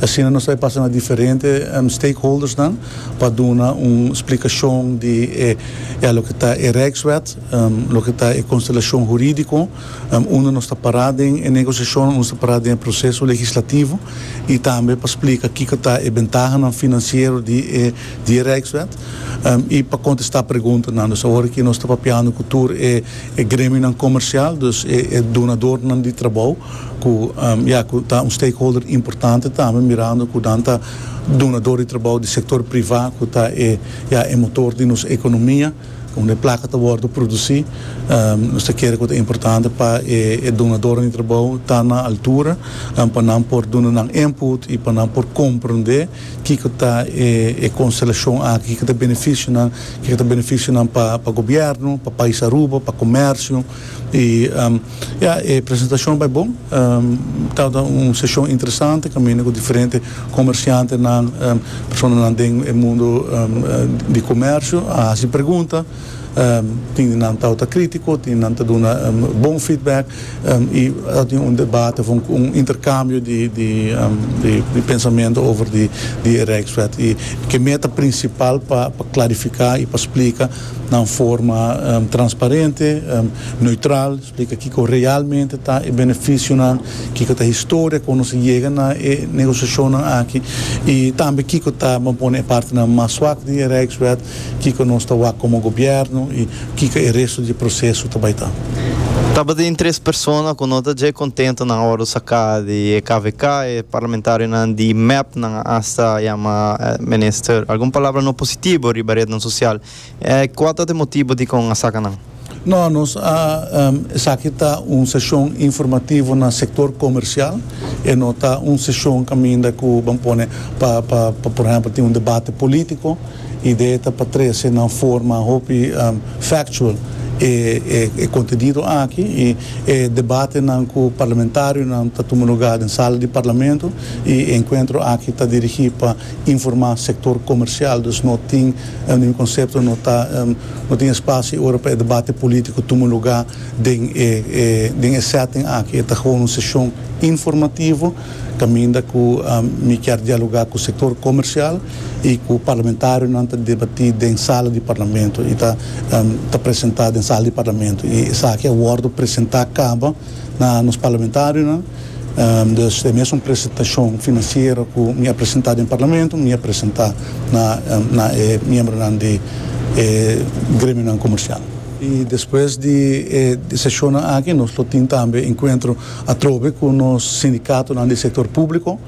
I asina nos ta e pasa na diferente stakeholdersnan pa duna un splikashon di e ya loke ta e Rijkswet, loke ta e konstelashon huridiko unda nos ta pará den e negosiashonnan, unda nos ta pará den e proseso legislativo i tambe pa splika kiko ta e bentahanan finansiero di e di e Rijkswet i pa kontestá preguntanan. Dus awor aki nos ta papiando ku tur e. e gremionan komersial, dus e e dunadornan di trabou ku ya ku ta un stakeholder importante tambe mirando ku nan ta dunador di trabou di sektor privá ku ta e ya e motor di nos ekonomia unda e plaka ta wòrdu produsí. Nos ta kere ku ta importante pa e e dunadornan di trabou ta na altura pa nan por duna nan input i pa nan por komprendé. Kiko ta e konstelashon aki? Kiko ta e benefisio nan? Kiko ta benefisio nan pa pa gobièrnu, pa pais Aruba, pa komèrsio? I ya, e presentashon bai bon. Tabata un seshon interesante kaminda ku diferente komershantenan, personanan den e mundu di komèrsio a hasi pregunta. Tin di nan tawata kritiko, tin di nan ta duna bon feedback i a tin un debate of un interkambio di pensamentu over di e Rijkswet. I ke meta prinsipal pa klarifiká i pa splika na un forma transparente, neutral, splika kiko realmente ta e benefisionan, kiko ta e historia kon nos a yega na e negosiashonnan aki i tambe kiko ta, bo a pone, e partenan mas swak di e Rijkswet. Kiko nos ta wak komo gobièrnu i kiko e restu di e proseso ta bai ta. Tabatin tres persona ku no ta dje kontento nan ora saka di e kvk, e parlamentarionan di mep nan a asta yama minister algun palabra no positibo riba retnan sosial. Kual ta e motibo dikon a saka nan? No, nos a esaki ta un seshon informativo na sektor komersial, e no ta un seshon kaminda ku ban pone pa pa por ehèmpel tin un debate polítiko. Idea ta pa trese na un forma hopi factual e e kontenido aki i e debatenan ku parlamentarionan ta tuma lugá den sala di parlamento i e enkuentro aki ta dirigí pa informá sektor komersial, dus no tin, mi konsepto no ta. No tin espacio ora pa e debate politico tuma luga den e den e setting aki. E ta gewoon un sesion informativo caminda cu mi kier dialoga cu sector comercial y cu parlamentarionan ta debati den sala di Parlamento y ta ta presenta den sala di Parlamento y esaki a wordo presenta caba. na nos parlamentarionan, dus e mesun presentashon finansiero ku mi a presentá den parlamento mi a presentá na e miembronan di e gremionan komersial. I despues di e seshonnan aki nos lo tin tambe enkuentro atrobe ku nos sindikatonan di sektor públiko.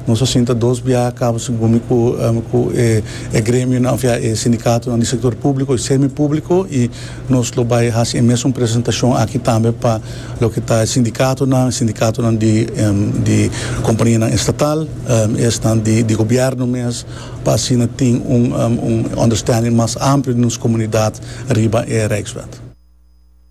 Nos a sinta dos biaha a kaba su gumi ku ku e e gremionan òf ya e sindikatonan di sektor públiko i semipúbliko i nos lo bai hasi e mesun presentashon aki tambe pa loke ta e sindikatonan, sindikatonan di di kompanianan estatal i esnan di di gobièrnu mes pa asina tin un un ònderstènding mas amplio den nos komunidat riba e Rijkswet.